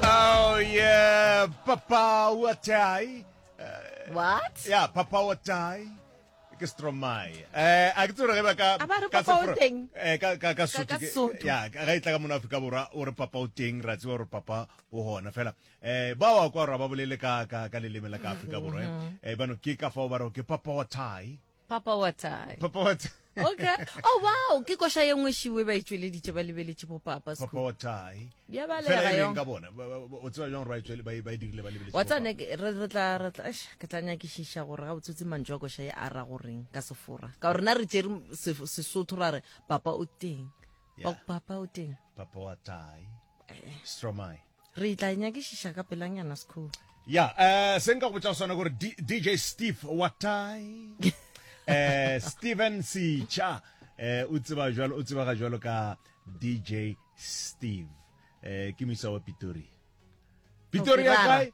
Oh yeah, papa wa tai. Uh, What? Yeah, papa wa tai. Ke Stromae. Eh, a ke tsore ge ba ka A ba re ka papa o Sefro- teng. Eh, ka ka ka Sotho. ka ke- Sotho. Ya, ka ga itla ka mona Afrika Borwa o re papa o teng, ra tseba gore papa o hona fela. Eh, ba wa kwa ra ba bolele ka ka ka leleme la ka Afrika Borwa. eh. Eh, bano ke ka fao ba re ke papa wa tai. papa wa tsai papa wa tsai okay oh wow ke koša ye nngwe šiwe ba itšweleditše ba lebeletše bo papa papa wa tsai ya ba le ga yong ka bona o tswa jang right tswele ba ba dirile ba lebeletše wa tsane re re tla re tla ke tla nya ke shisha gore ga botsotsi mantšwa koša ye ara goreng ka sefora ka rena re tsere sesotho ra re papa o teng papa o teng papa wa tsai eh. stromai Re tla e nyakišiša ka pelanyana sekhuwa. Ya, eh se nka go botša sona gore DJ Steve Watai eh Steven Sicha eh o tseba jwalo o tseba ga jwalo ka DJ Steve eh ke misa wa Pitori. Pitori ya kae?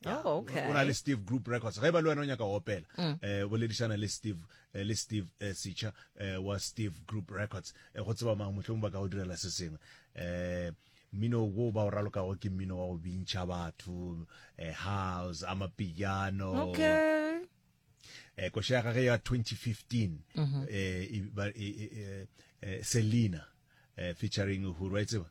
Yeah. Oh, okay. o na le steve group records ge ba le wena o nyaka go opela um boledišana le steve eh, le steve eh, sitšha eh, wa steve group records eh, go tseba mang mohlong ba ka go direla se sengwe um mmino wo ba o ralokago ke mmino wa go bintšha batho eh, house amapiano okay eh, koša ya gage ya 2015 mm-hmm. eh, e- ba- e- e- e- eh, selina eh, featuring huru wa e tseba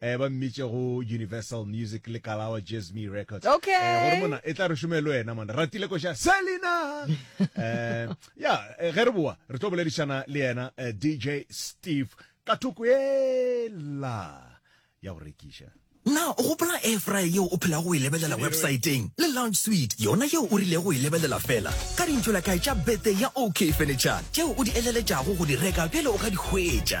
Eh, ba mmitše go Universal Music le Kalawa Jazzmee Records. Eh, Okay. gore mona e tla re šome le wena mona. Ratile ko sha Selina. Eh, ya eh, ge re boa re tlo boledišana le yena eh, DJ Steve ka thoko ela ya go rekiša. na o gopola air fryer yeo o phelago o e lebelela websaeteng le lounge suite yona yeo o rilego o e lebelela fela ka dintšola kae tša bete ya ok furniture tšeo o di eleletšago go di reka pele o ka di hwetša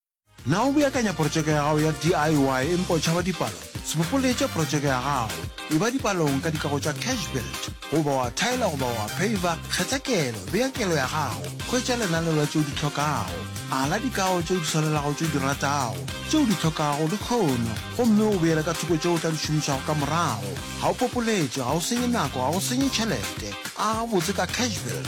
Na o beakanya protšeke ya gago ya DIY empa o tšhaba dipalo? Se bopoletše protšeke ya gago. Eba dipalong ka dikago tša Cash Build. Goba wa thaela goba wa pheivha, kgetha kelo, bea kelo ya gago, hwetša lenaneo la tše o di hlokago. Ala dikago tše o di swanelago tše o di ratago, tše o di hlokago le kgono, gomme o beele ka thoko tše o tla di šomišago ka morago. Ga o popoletše, ga o senye nako, ga o senye tšhelete. Aga gabotse ka Cash Build.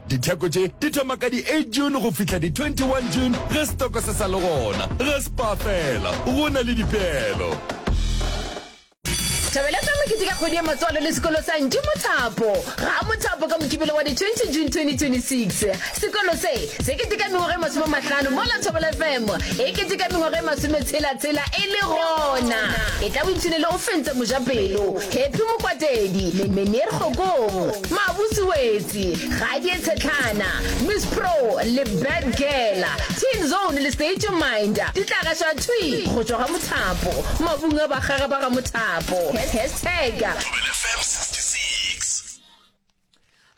Ditheko tše di thoma ka di-8 June go fihla di-21 June ge setoko se sa le gona. Ge spa fela, go na le dipeelo. Thabeletša mokete ka kgwedi ya matswalo le sekolo sa Ntši Mothapo. Ga mothapo ka Mokibelo wa di-20 June 2026. Sekolo se, se keteka mengwaga e masome mahlano mola Thobela FM e keteka mengwaga e masome tshela-tshela e le gona. E tla boipshine le go fentsa Mojapelo, Happy Mokwatedi, Menier Kgokong, Mabusi Wetse, Di Gadie Tshetlana, Miss Pro le Bad Girl, Teen Zone le State Your Mind di tla gaša thwi go tšwa ga mothapo, mabung a bakgaga ba ga mothapo. Hashtag. Thobela FM 66.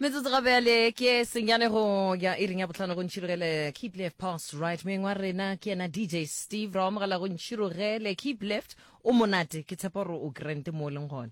Metsotso ga bjale ke senyane go ya e reng ya botlhano go ntšhirogele keep left pass right moeng wa rena ke yena dj steve ra amogela go ntšhirogele keep left o monate ke tshepa gore o grant mo o leng gone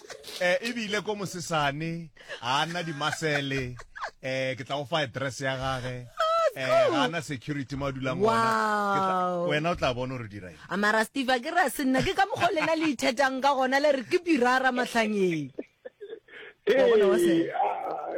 eh, ebile ko mosesane ga ana dimasele eh, ke tla go fa address ya gage eh, ga ana security mo a dulang Wow. ona Ke tla- wena o tla bona gore dira eng a mara steve a ke re a se nna ke ka mokgwa o lena le ithetang ka gona le re ke pirara matlhangeng Wa bona wa se- Hey, ah,